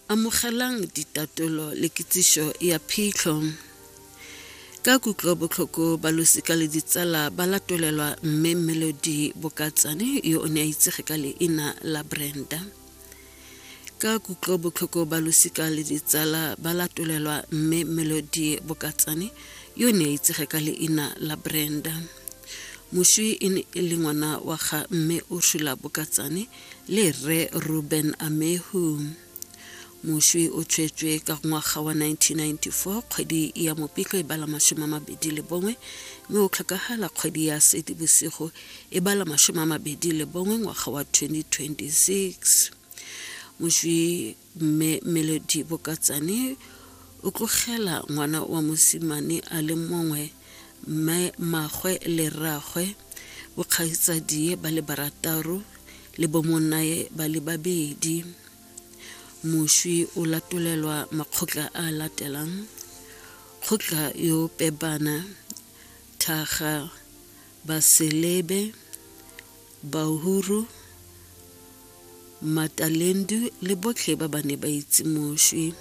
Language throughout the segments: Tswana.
Amogelang ditatolo le kitsiso ya phitlho. Ka kutlo botlhoko ba losika le ditsala ba latolelwa mme Melody Bokatsane yo o ne a itsege ka leina la Brenda. Ka kutlo botlhoko ba losika le ditsala ba latolelwa mme Melody Bokatsane yo o ne a itsege ka leina la Brenda. Moswi e ne e le ngwana wa ga mme Ursula Bokatsane le rre ruben amehu moswi o tshwetswe ka ngwaga wa 1994 kgwedi ya mopiko e bala masome a mabedi le bongwe mme o tlhokagala kgwedi ya sedi bosigo e bala masome a mabedi le bongwe ngwaga wa 2026 moswi mme melodi bokatsane o tlogela ngwana wa mosimane a le mongwe mme magwe le rragwe bokgaitsadie ba le barataro le bomonae ba le babedi moswi o latolelwa makgotla a latelang kgotla yo pebana thaga baselebe Bahuru, Matalendu le botlhe ba ba ne ba itse moswi.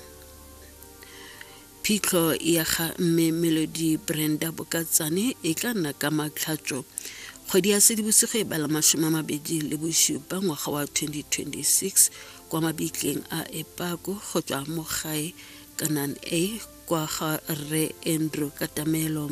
Phitlho ya ga Mme Melody Brenda Bokatsane e tla nna ka matlhatso kgwedi ya sedibosigo e bala masome a mabedi le bosupa ngwaga wa 2026 kwa mabitleng a epako go tswa mo gae kanan a kwa ga rre andrew katamelo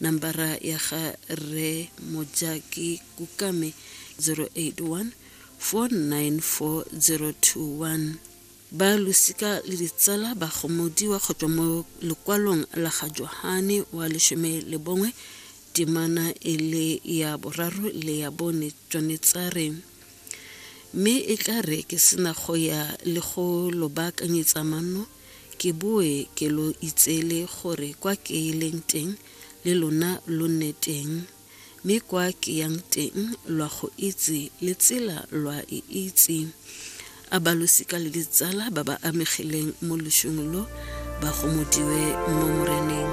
nambara ya ga re mojaki kukame 081 4940221 ba losika le ditsala ba gomodiwa go tswa mo lekwalong la ga johane wa lesome le bongwe temana e le ya boraro le ya bone tswanetsare mme e tla re ke sena go ya le go lo baakanyetsa manno ke boe ke lo itseele gore kwa ke leng teng le lona lo nne teng, mme kwa ke yang teng lwa go itse le tsela lwa e itse. A ba losika le ditsala ba ba amegileng mo loshung lo ba gomodiwe mo Moreneng.